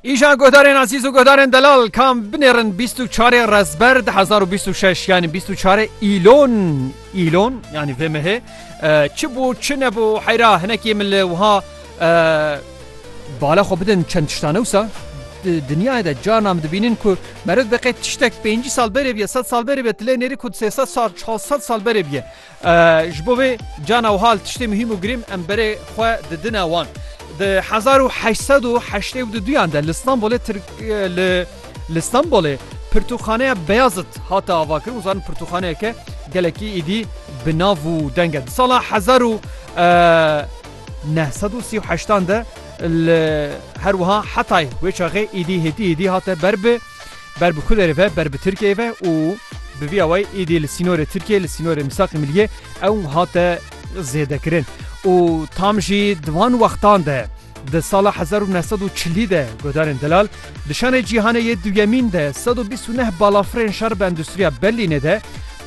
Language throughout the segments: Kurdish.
Îjan guhdarên Ezîz û guhdarên Delal kam binêrin 24 Rezber 2026 yanî 24 îlon îlon yanî vê mehê çi bû çi nebû heyra hinekî min li wiha bala xwe bidin çend tiştane wisa dinyayê de carna min dibînin ku meriv biqê tiştek 5 sal berê biye 100 sal berê biye tilê nêrî ku 300 sal 400 sal berê biye Ji bo vê cana wiha li tiştê muhîm û girîm em berê xwe didine wan. Di hezar û heşt sed û heştê û du duyan de li Stenbolê li Stenbolê Pirtûkxaneya Beyazit hate avakirin û zanin pirtûkxaneyeke gelekî êdî bi nav û deng e. Di sala hezar û neh sed û sî û heştan de li her wiha Hetay wê çaxê êdî hêtî êdî hate ber bi Ber bi ku derê ve ber bi Tirkiyeyê ve û bi vî awayî êdî li sînorê Tirkiyeyê li sînorê Mîsaqê Miliyê ew hate zêdekirin û tam jî di van wextan de di sala hezar û neh sed û çilî de guhdarên delal di şanê cîhanê yê duyemîn de sed û bîst û neh balafirên şer bi endustriya Berlînê de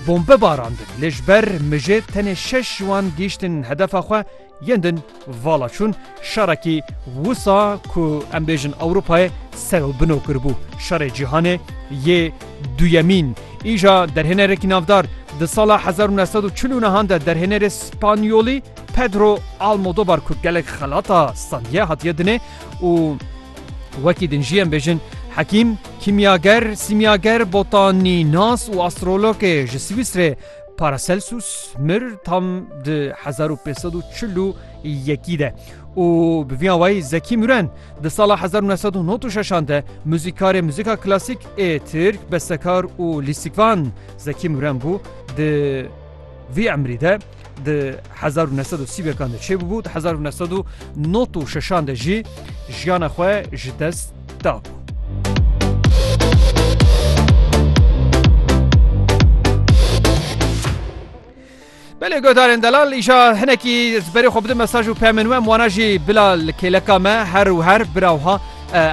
bombe barandin lê ji ber mijê tenê şeş ji wan gihîştin hedefa xwe Yên din vala çûn şerekî wisa ku em bêjin Ewropayê ser û bino kiribû. Şerê Cîhanê yê Duyemîn. Îja derhênerekî navdar di sala hezar û neh sed û çil û nehan de derhênerê Spanyolî Pedro Almodobar ku gelek xelata sandiye hatiye dinê û wekî din jî em bêjin hekîm, kîmyager, sîmyager, botanînas û astrologê ji Swîsrê Paracelsus mir tam di hezar û pênc sed û çil û yekî de û bi vî awayî Zekî Müren di sala hezar û neh sed û nod û şeşan de muzîkarê muzîka klasîk ê Tirk, bestekar û lîstikvan Zekî Müren bû di vî emrî de di hezar û neh sed û sî wekan de çêbûbû di hezar û neh sed û nod û şeşan de jî jiyana xwe ji dest dabû. Belê godarên delal îşa hinekî berê xwe bidin mesaj û pemên we wana jî bila li kêleka me her û her birawha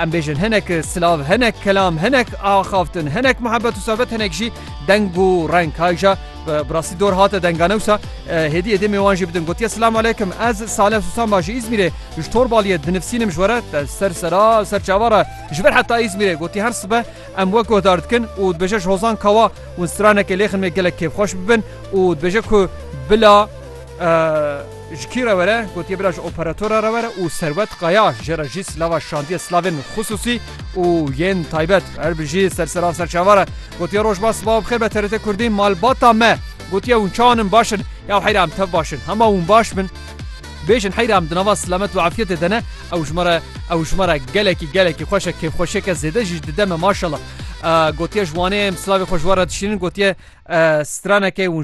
em bêjin hinek silav hinek kelam hinek axaftin hinek muhebbet û sohbet hinek jî deng û reng hayja Bi rastî dor hate dengane wisa hêdî êdêmê wan jî bidin gotiye Silamu aleykum ez Saleh Susan ba ji Îzmîrê ji Torbaliyê dinivsînim ji we re te ser sera ser çava re ji vir heta Îzmîrê gotî her sibe em wek guhdar dikin û dibêje ji hozan kawa û stranekê lêxin wê gelek kêfxweş bibin û dibêje ku bila Ji kî re were? Gotiye bira ji operatora re were û Serwet Kaya jê re jî silava şandiye silavên xisûsî û yên taybet. Her bijî ser silav ser çava re. Gotiye rojba sibav bixêr be TRT Kurdî malbata me. Gotiye hûn çawan in baş in? Ya heyra em tev baş in. Hema hûn baş bin. Bêjin heyra em di nava silamet û efyetê de ne. Ew ji me re ew ji me re gelekî gelekî xweş e kêfxweşiyeke zêde jî ji dide me maşallah. Gotiye ji wanê em silavê xwe ji we re dişînin gotiye straneke hûn